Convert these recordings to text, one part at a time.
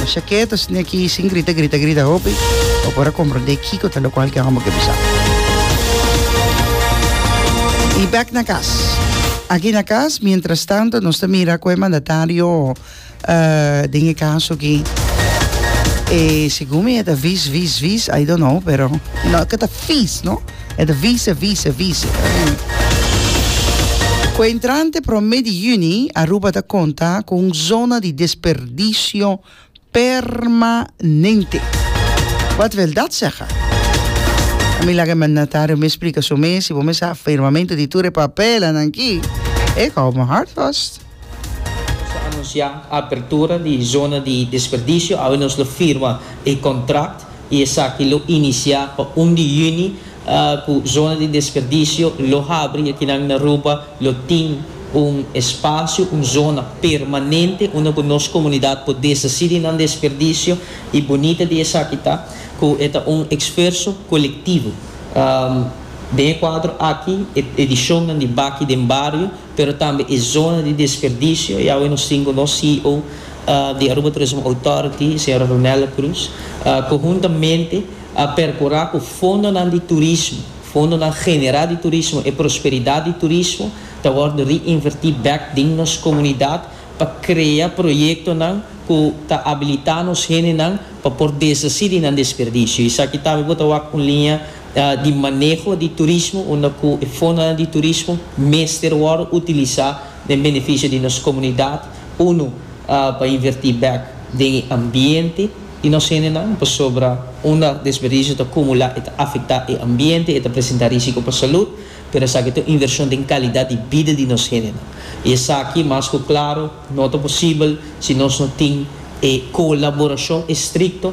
No sea keto, sini aki sin grita, grita, grita hopi, pa por a comprende kiko ta locual ke homber ke bisa. Y back na cas. Aki na cas, mientras tanto, nos ta mira cu e mandatario eh, den e caso aki, eh, segun mi e ta vis, vis, vis, I don't know, pero no, ke ta vis, no? E ta vise, vise, vise. Ku e entrante promé di yüni, Aruba ta konta ku un zona di desperdisio permanente. Wat veldat sègha? A mi laga e mandatario mes splika su mes, si bo mes sa firmamento di tur e papelanan ki, ik hou me hart vast. Nos a anunsiá apertura di zona di desperdisio, awe nos lo firma e kontrakt i esaki lo inisiá pa un di yüni ku zona di desperdisio lo habri. Akinan na Aruba lo tin un espasio, un zona permanente unda ku nos komunidat por deshasí di nan desperdisio i bunita di esaki ta ku e ta un eksferso kolektivo. Den e kuadro aki e edishonnan di Baki den Bario pero tambe e zona di desperdicio y awe nos tin cu nos CEO di Aruba Tourism Authority señora Ronella Cruz conhuntamente a percura cu fondonan di turismo, fondonan genera di turismo, e prosperidad di turismo ta wordo reinverti bek den nos comunidad pa crea proyectonan cu ta abilita nos hendenan pa por deshaci di nan desperdicio y esaki tambe bo ta wak un linea di maneho di turismo unda ku e fondonan di turismo mester wòrdu utilisá den benefisio di nos komunidat, unu, pa invertí bèk den e ambiente di nos hendenan, pasobra unda desperdisio ta kumulá e ta afektá e ambiente, e ta presentá rísiko pa salud, pero esaki ta un invershon den kalidat di bida di nos hendenan. I esaki mas ku klaro no ta posibel si nos no tin e kolaborashon estrikto.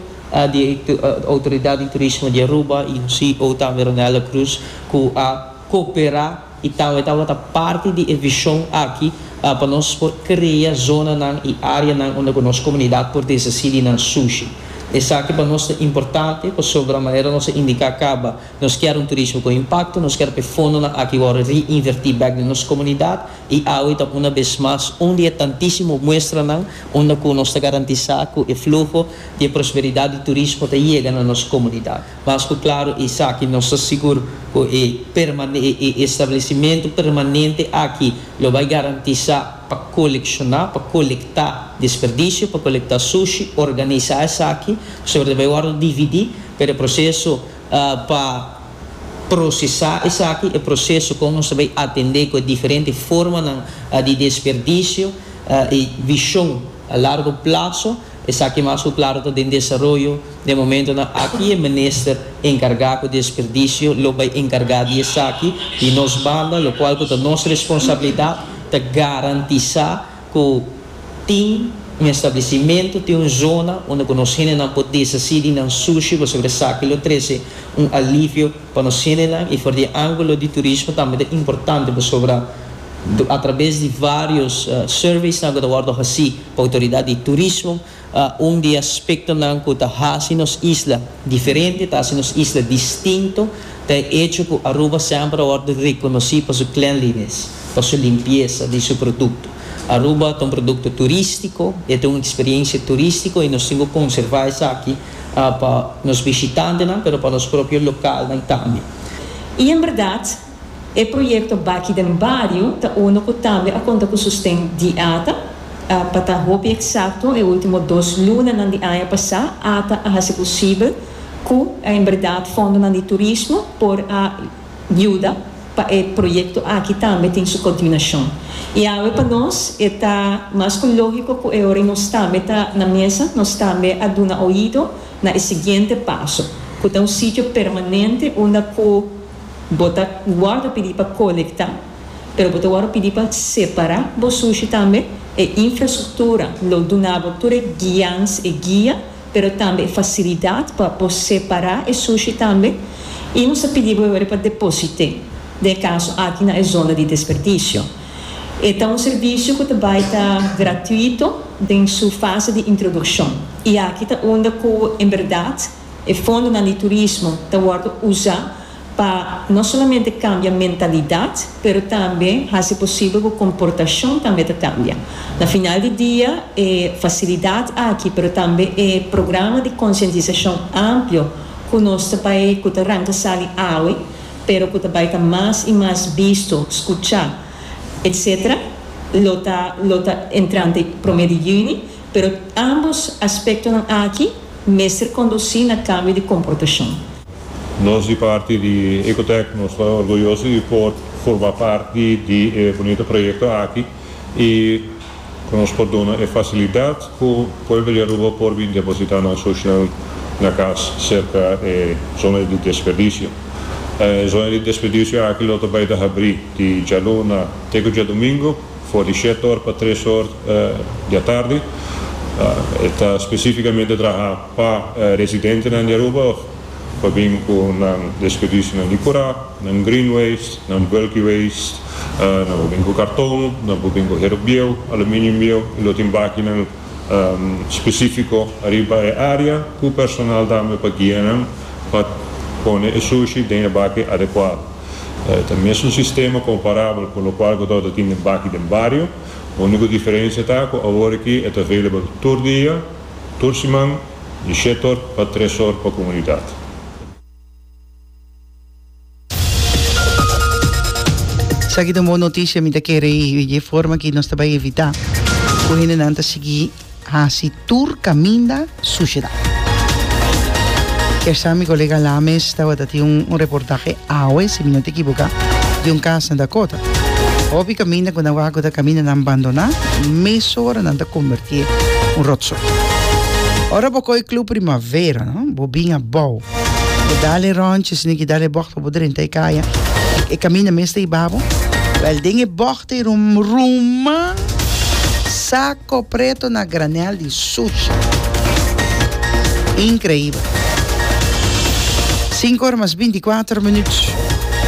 di Outoridat di Turismo di Aruba y un ceo tambe Ronelda Cruz cu a coopera y tambe tabata parti di e vision aki pa nos por crea zonanan y areanan unda cu nos comunidad por desaci di nan sushi. Esaki pa nos ta importante pasobra manera nos a indica caba nos kier un turismo con impacto, nos kier pa e fondonan aki worde reinverti bek den nos comunidad y awe ta una bes mas un di e tantisimo muestranan unda cu nos ta garantisa cu e fluho y e prosperidat di turismo ta yega na nos comunidad. Mas cu claro esaki nos ta sigur cu e establecimento permanente aki lo bay garantisa pa colecciona, pa colecta desperdicio, pa colecta sushi, organisa esaki, pasobra ta bay wordo dividi, pero e proceso pa procesa esaki, e proceso con nos ta bay atende cu e diferente formanan di desperdicio, e vision a largo plazo. Esaki mas ku klaro ta den desaroyo. Den momentonan aki e minister enkargá ku desperdisio lo bai enkargá di esaki. Di nos banda, lokual ku ta nos responsabilidat, ta garantisá ku tin un establesimentu, tin un zona unda ku nos hendenan por desasí di nan sushi pasobra esaki lo trese un alivio Pa nos sienenan y for di e angulo di turismo tambe ta importante pasobra a traves di varios surveysnan cu ta wordo haci pa autoridad di turismo un di e aspectonan cu ta haci nos isla diferente, ta haci nos isla distinto ta e hecho cu Aruba semper a wordo reconoci pa su cleanliness, pa su limpieza di su producto. Aruba ta un producto turistico, e ta un experiencia turistico y nos tin cu conserva esaki. pa nos bishitantenan pero pa nos propio lokalnan tambe. Y en berdad, e proyecto Baki den Bario ta uno cu tambe a conta cu sosten di ata. Pa ta hopi exacto, e ultimo dos lunanan di aña pasa ata a haci posibel cu en berdad fondonan di turismo por a. yuda pa e proyekto aki tambe tin su kontiunashon. I awe pa nos e ta mas ku lógiko ku e ora nos tambe ta na mesa nos tambe a duna oido na e siguiente paso, ku ta un sitio permanente unda ku bo ta wòrdu pidi pa kolektá, pero bo ta wòrdu pidi pa separá bo sushi tambe, e infrastruktura lo duna bo tur e guians, e guia. pero tambe e facilidad pa bo separa e sushi tambe y nos a pidi bo e worde pa deposite den e caso aki na e zona di desperdicio. E ta un servicio cu ta bay ta gratuito den su fase di introduccion y aki ta unda cu en berdad e fondonan di turismo ta worde uza pa no solamente kambia mentalidat pero tambe hasi posibel ku komportashon tambe ta kambia. Na final di dia e fasilidat aki pero tambe e programa di konsientisashon amplio ku nos ta bai ku ta ranka sali awe pero ku ta bai ta mas i mas bisto, skuchá etc. Lo ta lo ta entrante promé di yüni pero ámbos aspektonan aki mester kondusí na kambio di komportashon. Nos di parti di Ecotec nos ta orguyoso di por forma parti di e bunito proyekto aki y cu nos por duna e facilidad cu pueblo di Aruba por bin deposita nan social na cas cerca e zona di desperdicio. E zona di desperdicio aki lo ta bay ta habri di djaluna te cu djadumingo for di shet or pa tres or di atardi. E ta specificamente traha. Pa residentenan di Aruba of pa bin ku nan desperdisinan di kurá, nan green waste, nan bulky waste, nan por bin ku karton, nan por bin ku hero bieu, aluminium bieu i lo tin bakinan spesífiko ariba e área ku personal tambe pa guia nan pa pone e sushi den e baki adekuado. Ta mes un sistema komparabel ku lokual ku ta tin den baki den bario, úniko diferensia ta ku awor aki e ta available tur dia. Tur siman di shetor pa tresor pa komunidat. Esaki ta un bon noticia mi ta kere y dje forma ki nos ta bai evita cu hendenan ta sigui haci tur caminda suciedad. Kersa mi colega Lames tabata tin un reportahe awe si mi no ta ekiboca di un cas na Dakota. Hopi kaminda ku nan waha ku ta kamindanan bandoná, mesora nan ta kombertié un ròtsoi. Ora bo koi Club Primavera, no, bo bin abou. Bo dal e ròntje, si no ke dal e bògte pa bo drenta e kaya. E kaminda mes ta iba bo. Wèl, den e bògte ei rum, ruman, sako preto na granèl di sushi. Inkreibel. Sinku ora mas binti kuater minut.